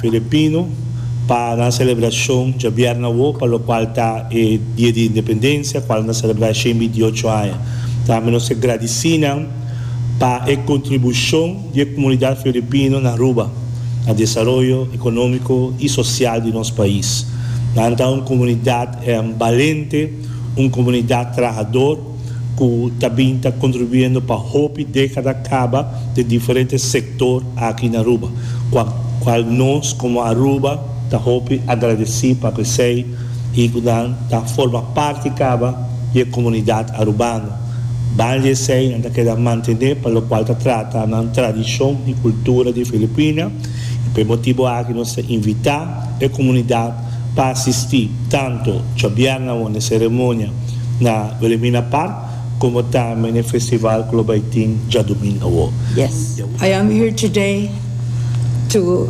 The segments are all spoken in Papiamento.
Filipino para a selebrashon djabièrnè awo pa lokual ta e Dia di Independensia kual nan selebrá e shen bintiocho aña. Tambe nos ke gradisí nan pa e kontribushon di e komunidat filipino na Aruba, na desaroyo ekonómiko i sosial di nos pais. Nan ta un komunidat balente, un komunidat trahador. cu ta bin ta contribuyendo pa hopi decada caba den diferente sector aki na Aruba, cua cual nos como Aruba ta hopi agradeci pa pesey y cu nan ta forma parti caba di e comunidad Arubano. Ban di esey nan ta keda mantene pa locual ta trata nan tradicion y cultura di Filipina y pa e motibo aki nos ta invita e comunidad pa asistí tantu djobièrna wonde seremonia na Wilhelmina Park komo tambe na e festival ku lo bai tin djadumingu awo. I am here today to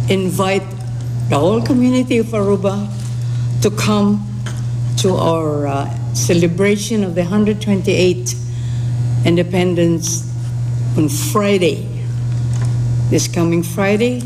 invite the whole community of Aruba to come to our celebration of the hundred twenty eight independence on Friday, this coming Friday.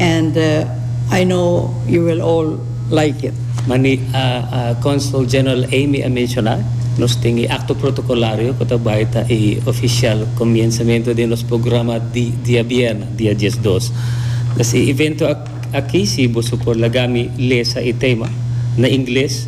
and I know you will all like it. Mani Consul General Amy a menciona, nos tin e acto protocolario cu ta bay ta e oficial comienzamento den nos programa di dia bierna, dia diesdos. Pues e evento aki si boso por laga mi lesa e tema na ingles.